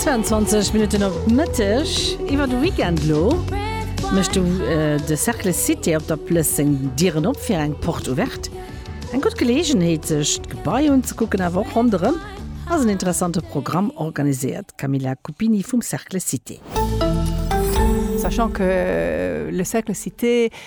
22 Minutten op Mëtteg iwwer de Weekend lo mecht du de Cercle Cité op der Plëss seng Dieren op fir eng Porte Ouverte. Eng gutt Geleegenheet sech d'Gebai unzekucken awer och ronderëm ass en interessante Programm organiséiert, d'Camilla Cuppini vum Cercle Cité. Sachant que le Cercle Cité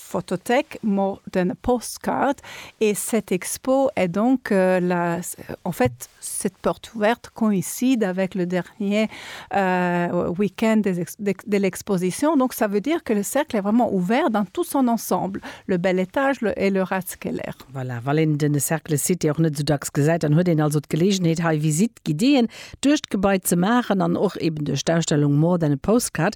Photothèque mor d'un postcard et cette expo est donc la en fait cette porte ouverte coïncide avec le dernier week-end des ex de l'exposition donc ça veut dire que le cercle est vraiment ouvert dans tout son ensemble, le bel étage, le et le Ratskeller. Voilà, wann een den Cercle Cité och net esou dacks gesäit, dann huet een also d'Geleegenheet hei Visite guidéeën duerch d'Gebai ze maachen an och eben duerch d'Ausstellung mor d'un postcard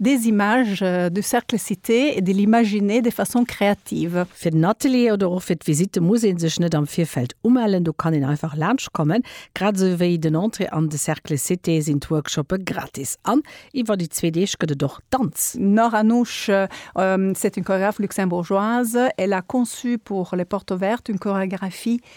Des images du cercle cité et de l'imaginer de façon créative. Fir den Atelier oder och fir d'Visitte muss ee sech net am Virfeld umellen, do kann een einfach laanscht kommen. Grad esou wéi den Entrée an de Cercle cité sinn d'Workshoppe gratis an iwwer déi zwee Deeg gëtt et och Danz. Nora Nusch, C'est une chorégraphe luxembourgeoise, elle a conçu pour les portes ouvertes une chorégraphie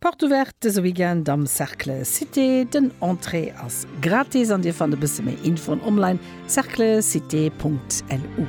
Porte ouverte dëse Weekend am Cercle Cité. Den Entrée ass gratis an dir fannt e bësse méi Infoen online, cerclecité.lu.